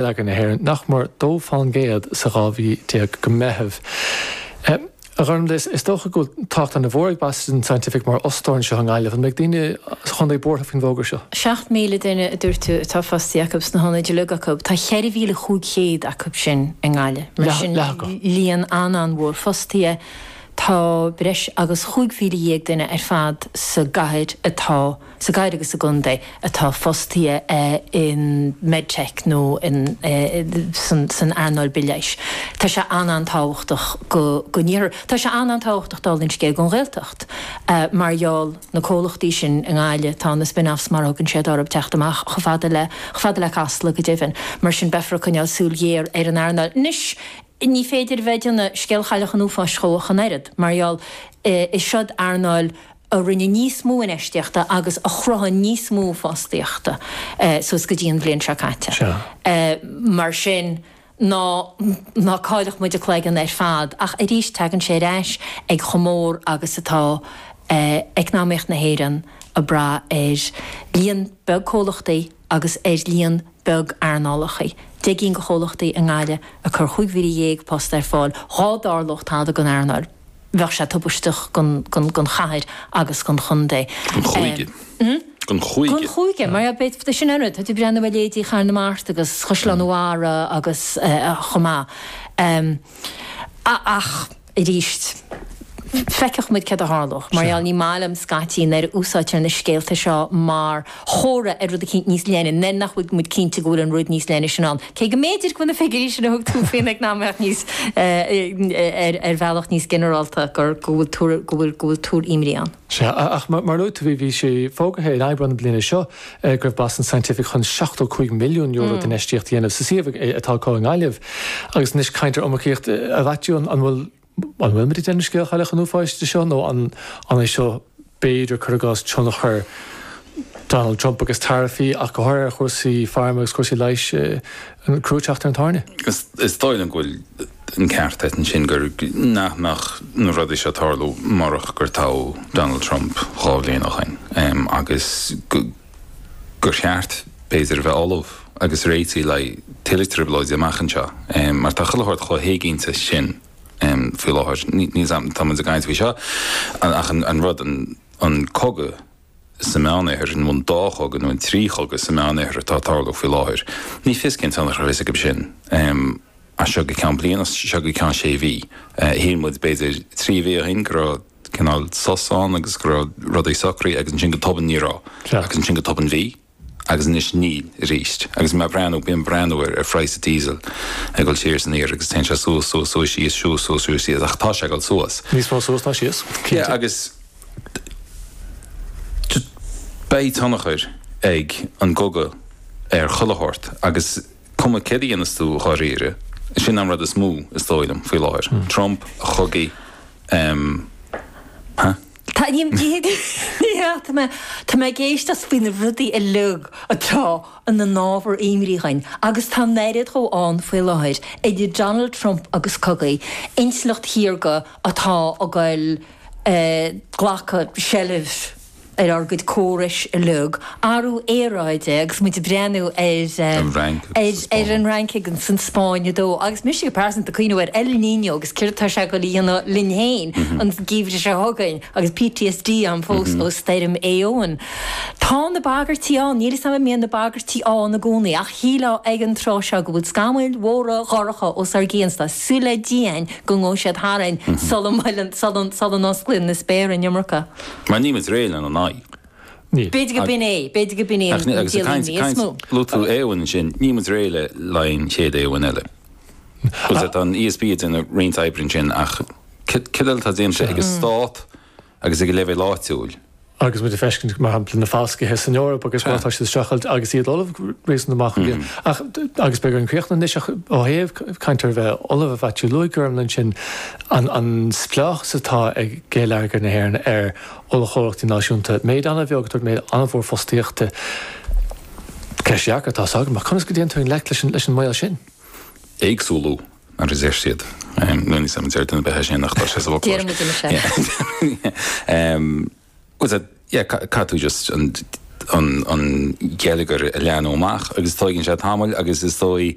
leagan na hÉireann, nach mór dó faoin gcéad sa 12 mhí go Meitheamh. A Ghormfhlaith, is dócha go bhfuil tábhacht an-mhór ag Boston Scientific mar fhostóir anseo i nGaillimh. An mbeidh daoine sa chondae buartha faoin bhfógra seo? 7,000 duine a dúirt tú atá fostaithe acu sna hionaid uilig acu. Tá 4,500 acu sin i nGaillimh. Mar sin, líon an-an-mhór fostaithe. Tá breis agus chúig mhíle dhéag duine ar fad sa gcathair atá. sa gcathair agus sa gcontae atá fostaithe i Medtech nó san earnáil bithleighis. Tá sé an-an-tábhachtach don iarthar. Tá sé an-an-tábhachtach dála an scéil don Ghaeltacht mar gheall ar na comhlachtaí sin i nGaillimh. Tá na spin-offs mar a thugann siad orthu ag teacht amach chomh fada le Casla go deimhin. Mar sin beifear ag coinneáil súil ghéar ar an earnáil anois. Ní féidir a bheith ag déanamh scéal Chailleach an Uafáis dhe ach an oiread, mar gheall is eod earnáil a rinne níos mó infheistíochta agus a chruthaigh níos mó fostaíochta suas go dtí an bhliain seo caite. Mar sin, ná ná cailleadh muid an cloigeann ar fad, ach arís tagann sé ar ais ag chomh mór agus atá eacnamaíocht na hÉireann ag brath ar líon beag comhlachtaí, agus ar líon beag earnálacha. Deich gcinn de chomhlachtaí i nGaillimh ag cur chúig mhíle dhéag post ar fáil. Dhá dtarlódh tada don earnáil, bheadh sé tubaisteach don chathair agus don chontae. Don chúige. Don chúige. Don chúige, mar sin an rud. Tá tú ag breathnú ar leithéidí Chathair na Mart agus Chaisleán an Bharraigh agus chomh maith. Ach. arís. Feicfidh muid céard a tharlós. Mar gheall, ní maith liom scaití nuair a úsáidtear na scéalta seo mar chomhartha ar rud eicínt níos leithne, nuair nach bhfuil muid cinnte go bhfuil an rud níos leithne sin ann. Cé go mb'fhéidir go bhfuil na figiúirí sin a thug tú faoin eacnamaíocht níos, ar bhealach níos ginearálta, go bhfuil tuairimí ann. Sea, ach mar a luaigh tú, bhí sé fógartha in Aibreán na bliana seo go raibh Boston Scientific chun €75 milliún d'infheistíocht a dhéanamh sa suíomh atá acu i nGaillimh. Agus anois caint ar iomarcaíocht, a Mhaitiú, an bhfuil, an bhfuilimid ag déanamh scéal chailleach an uafáis de seo nó an é seo b'fhéidir, cur i gcás, tionchar Donald Trump agus taraifí ach go háirithe ar chúrsaí phairme agus cúrsaí leighis, an crú ag teacht ar an tairne? Is dóigh liom go bhfuil. an ceart a't ansin gur nach mbeadh na rudaí seo ag tarlú murach gur toghadh Donald Trump dhá bhliain ó shoin agus gur cheart, b'fhéidir, a bheith ullamh agus réitigh le tuilleadh trioblóidí amach anseo mar tá chuile shórt chomh héiginnte sin faoi láthair. Níl, tá muid ag caint faoi seo ach an rud, an cogadh sa Meánoirthear, i mbun dá chogadh nó i mbun trí chogadh sa Meánoirthear atá ag tarlú faoi láthair. Ní fios cén tionchar a bheas aige sin. As seo go ceann bliana, as seo go ceann sé mhí. Shíl muid, b'fhéidir trí mhí ó shin, go raibh cineál sos ann agus go raibh rudaí socraithe agus ansin go tobann ní raibh. Agus ansin go tobann bhí. Agus anois aríst. Agus mé ag breathnú, bíonn ag breathnú ar phraghas diesel ag dul siar is aniar agus téann sé suas, suas, suas, síos, suas, suas, síos, síos, ach tá sé ag dul suas. Níos mó suas ná síos, cinnte. Agus beidh tionchar ag an gcogadh ar chuile shórt agus cuma céard a dhéanas tú dháiríre, sin an rud is mó is dóigh liom faoi láthair, Trump, a chogaí, hup. Tá tá mé ag éisteacht faoi na rudaí uilig atá ina n-ábhar imní dhúinn agus tá an oiread dhóibh ann faoi láthair idir Donald Trump agus cogaidh, intleacht shaorga atá ag goil, eh, ag glacadh seilbh ar ár gcuid córais uilig Athrú aeráide agus muid ag breathnú ar. an Fhrainc agus an Spáinn. Ar an Fhrainc agus an Spáinn á dó. Agus mise go pearsanta ag cuimhneamh ar El Niño agus céard atá sé ag dul a dhéanamh linn féin an geimhreadh seo chugainn agus PTSD agam fós ó stoirm Eowyn. Tá na bagairtí ann. Níl a fhios agam an mbíonn na bagairtí ann i gcónaí ach shílfeá ag an tráth seo go bhfuil scamaill mhóra dhorcha os ár gcionn, tá súil le Dia'm go ngabhfaidh siad tharainn sula osclaíonn na spéartha an iomarca. Mar níl muid réidh lena n-aghaidh. Ní. B'fhéidir go b'in é, b'fhéidir go b'in é an dialann níos mó. Luaigh tú Éowyn ansin, níl muid réidh le haghaidh an chéad Éowyn eile. Agus tá an ESB ag déanamh roinnt oibre ansin ach cad eile atá déanta ag an stát agus ag an leibhéal áitiúil? Agus muid ag feiscint, mar shampla, na falscaithe san Eoraip agus mar atá siad ag streachailt agus iad ullamh réasúnta maith chuige. Ach, agus beidh orainn críochnú anois, ach ó thaobh caint ar a bheith ullamh, a Mhaitiú, luaigh Gormfhlaith ansin an spleáchas atá ag geilleagar na hÉireann ar ollchomhlachtaí náisiúnta, méid an-bheag do thabhairt méid an-mhór fostaíochta. Ceist dheacair atá a fhios agam ach conas go dtéitear i ngleic leis an mbaol sin? éagsúlú mar a deir siad. Níl a fhios a'm an ndéarfadh duine ar bith é sin ach tá sé sa bhfoclóir. Déarfaidh muid anois é. Was it, yeah, caithfidh tú just an, an, an geilleagar a leathnú amach agus tóigeann sé tamall agus is dóigh.